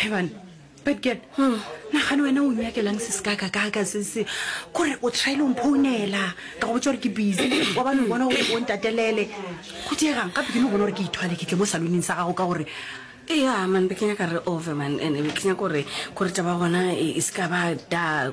heban betged hmm. nagane wena o nyakelang se se kakakaka se se kore o trile mphounela ka go botsa gore ke busy wa bane bona gore o ntatelele go diegang gape ke no bona gore ke ithwale ke tle mo saloning sa gago ka gore ea man be kenya ka re overman and be kenya kore kore taba gona e, e se ka ba da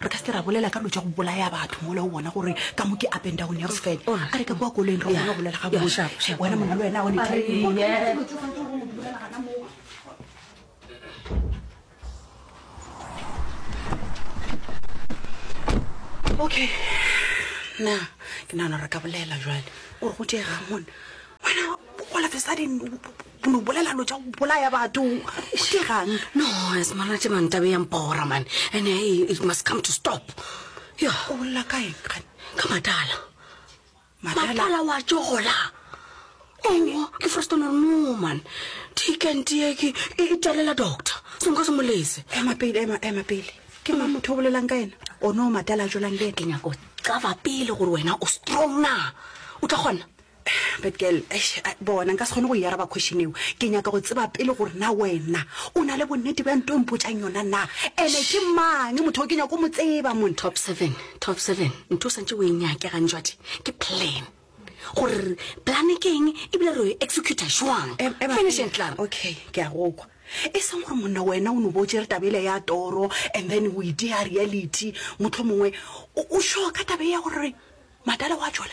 Re ka se ke ra bolela ka dilo tša go bolaya batho mola o bona gore ka mo ke up and down ya sefele a re ka kwa koloing re bona bolela ga botse wena monna le wena o ne okay na ke nagana re ka bolela jwale o re go tšeega mone wena all of a sudden bono bolela lo tša go bolaya batho ke gang no semana tše mantabe yang pora mane and eh, it must come to stop yo o bolela ka eng gane ka matala matala wa tšogola owo ke frostonor no man tikentiye ke e talela doctor sengwe ka se molese ema pele ema ema pele ke ma motho o bolelang ka ena o no matala a tšolang le ke nyako cava pele gore wena o strong na o tla kgona But girl, eish, a, bona nka se kgone go e araba question eo. Ke nyaka go tseba pele gore na wena o na le bonnete bja nto o mpotšang yona na. Ene ke mang motho o ke nyako mo tseba mone. Top seven, top seven, ntho o santse o e nyake gantšwadi ke plan. Gore plan ke eng ebile re e executa jwang. Em, ema Finish pele. and club. Okay, ke a go kwa. E seng gore monna wena o no bo o tšere taba ele ya toro and then o e dea reality motlho mongwe. O, o sure ka taba e ya gore madala wa tšwala?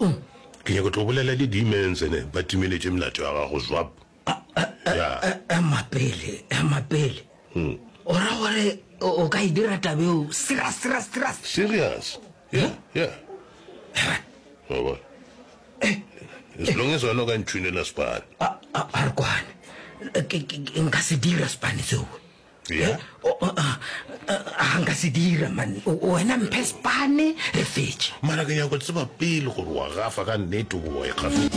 Uhm. Ke nyaka tlo bolela le demons ene ba timeletše melato ya gago zwap. Ema pele, ema pele. Hmm. O ra gore o ka e dira tabeo serious serious serious. Serious. Yeah, yeah. Wa bona. As long as wena o ka ntshunela spane. A re kwane. Nka se dira spane seo. Yeah. O- o- ah, ah, ah, nka se dira mane O- wena mphe spane re fetše mara ke nyako tseba pele gore wa gafa ka nnete goba wa ikgafetsa